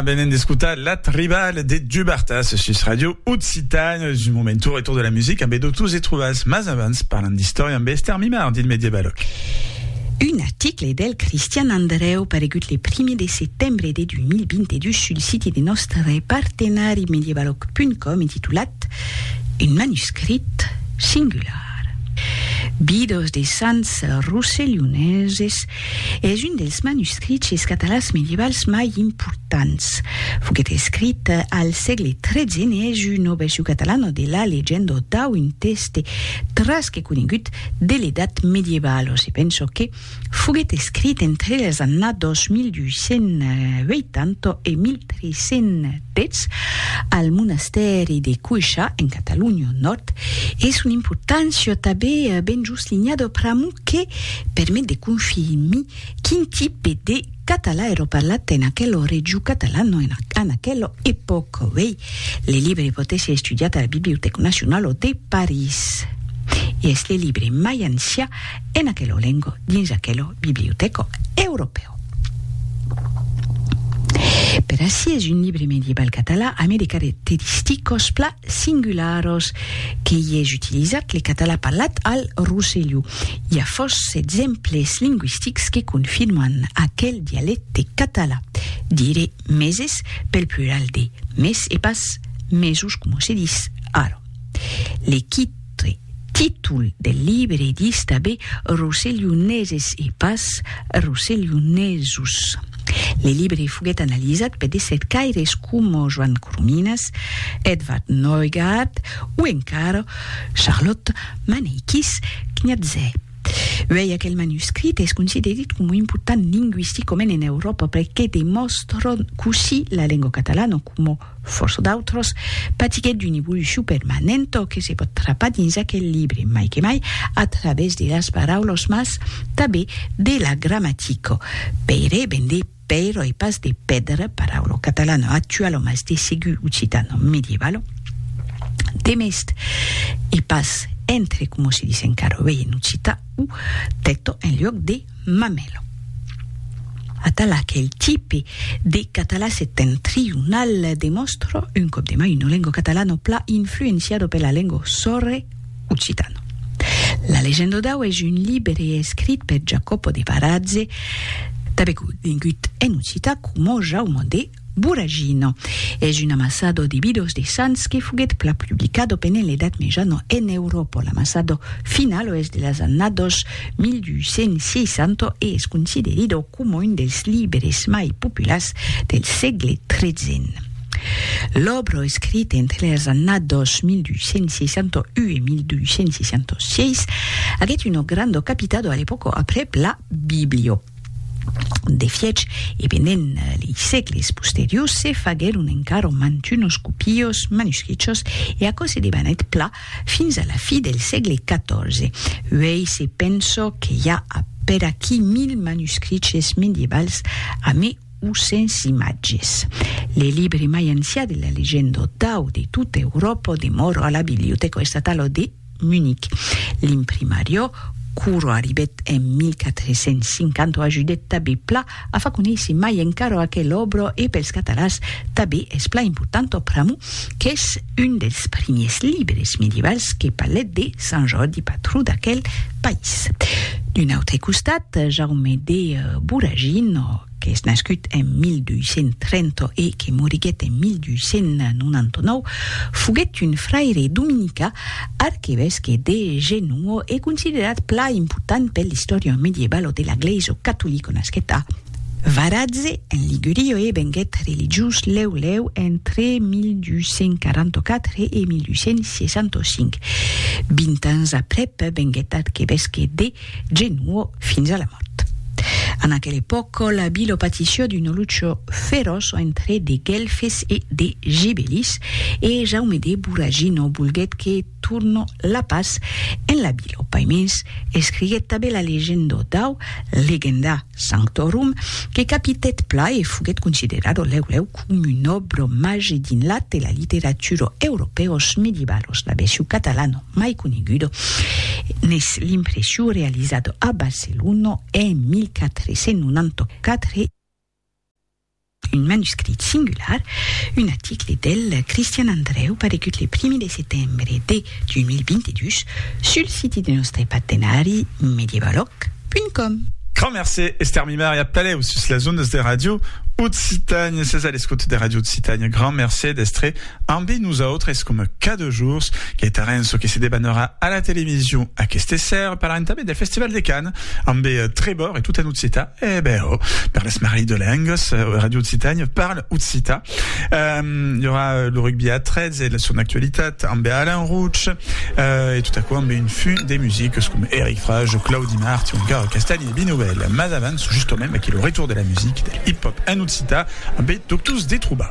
venen d'escotar Lat Rival de Dubartas sus Radio Occitan. Es un moment tour e tour de la musica amb Edotus e Truvas, mas abans parlant d'istòria amb Esther Mimard dins Medievaloc. Un article del Cristian Andreu paregut le primi de setembre de 2022 sul siti de nòstre partenari medievaloc.com intitulat Un manuscrit singular. Bidos de sants rosselhoneses Es un dels manuscriches catalans medievals mai importants. Foguèt escrit al sègle tretze en una version catalana de la Legenda dau un tèxte tras que conegut de l'Edat Medievalo. Se pensa que foguèt escrit entre las annadas 1280 e 1330. Petz, al monastèri de Cuixa, en Catalonha Nòrd, e son importància tabé ben just linhada pr'amor que permet de confirmir quin tipe de catalan èra parlat en aquela region catalana en aquela epòca. Uèi, le libre pòt èsser estudiat a la Bibliotèca Nacionala de París e es le libre mai ancian en aquelo lengo dins aquelo bibliotèco europèu. Per ací es un libre medieval catalan amé de caracteristicos pla singularos que i es utilizat le catalan parlat al Rosselló. I a fòrça d'exemples lingüistics que confirman aquel dialècte catalan. Dire meses pel plural de mes e pas mesos coma se dis ara. Le qui Autre títol del libre ditz tanben Rosselhoneses e pas Rosselhonesos. Le libre foguèt analizat per de cercaires coma Joan Corominas, Edvard Neugaard o encara Charlotte Maneikis Kniaze. Uèi aquel manuscrit es considerit coma important lingüisticament en Euròpa perque demòstra cossí la lengua catalana coma Fòrça d'autras patiguèt d'una evolucion permanenta que se pòt trapar dins aquel libre, mai que mai a través de las paraulas mas tanben de la gramatica. Pèire ven de pèira e pas de pèdra, paraula catalana actuala mas de segur occitana medievala. Demest e pas entre coma se dis encara uèi en occitan, u, tèta en luòc de. Mamelo. Atala qu'el tipe de català septentrional demòstra un còp de mai una lengo catalano pla influenciado per la lengo sòrre occitano. La Legendo dau es un libre escrit per Jacopo de Varazze, tanben conegut en occitan coma Jaume de. Buragino. Es un amassado de bidos de sants que foguèt plan publicado pendent l'Edat Mejana en Euròpa. L'amassado finalo es de las annados 1260 e es considerido coma un dels libres mai populars del sègle tretzen. L'òbra escrita entre las annados 1261 e 1266 aguèt una granda capitado a l'epòca aprèp la Biblio. De fiech, e pendent lei sègles posteriors se faguèron encara mantunos copios manuscrichos e aquò se debanèt pla fins a la fi del sègle XIV. Uèi se penso que i a a per aquí mil manuscriches medievals a mai o sens imatges. Le libre mai ancià de la legenda dau de tota Euròpa demòra a la Bibliotèca Estatala de Munic. L'imprimario, Curro arribèt en 1450 o ajudèt tabé pla a fa conéisser mai encara o aquel òbro e pels catalans tabé es pla important o pr'amor qu'es un dels primiers libres medievals que palèt de Sant Jordi patró d'aquel país. D'un autre costat, Jaume de Voragine o. qu'es nascut en 1230 e que moriguèt en 1299, foguèt un fraire dominicà, arquevesque de Genoa e considerat plan important per l'istòria medievalo de la glèisa catolica. Nasquèt a. Varazze, en Liguria e venguèt religiós lèu lèu entre 1244 e 1265. Vint ans aprèp venguèt arquevesque de. Genuo fins a la mòrt. En aquel epòca la vila patissió d'una lucha feròç entre de Guelfes e de Gibelis e Jaume de Voragino volguèt que tornò la pas en la vila. Paimens escriguèt tanben la legenda dau Legendar. Sanctorum, que capitèt pla e foguèt considerado lèu-lèu com un òbro màger dins l'at e la literatura europèos medievalos. La versio catalana mai coneguda n'es l'impressiu realizada a Barcelona en 1494. Un manuscrit singular, un aticle del Cristian Andrèu paregut le primi de setembre de 2022 sul siti de nòstre partenari medievalòc.com. Grand mercé Esther Mimar e a pelèu sus las ondas de Radio Occitània. Sètz a l'escota de Radio Occitània. Grand mercé d'èstre ambe nosautres coma cada jorns. Gaita Renzo que se debanarà a la television aqueste ser parlant tanben del Festival de Cannes ambe Trevor e tot en Occità. Eh ben, oh, per l'esmarrit de lengas, Radio Occitània parle occità. Um, hi aurà lo rugbi a 13 e la son actualitat amb Alain Rouch, uh, e tot aquò amb un funt de musiques com Eric Frage, Claudi Mart o encara Castagni e Binovel. Mas avans, justomem, aquí lo retour de la musique, del hip-hop en occità, amb Doctors Detruba.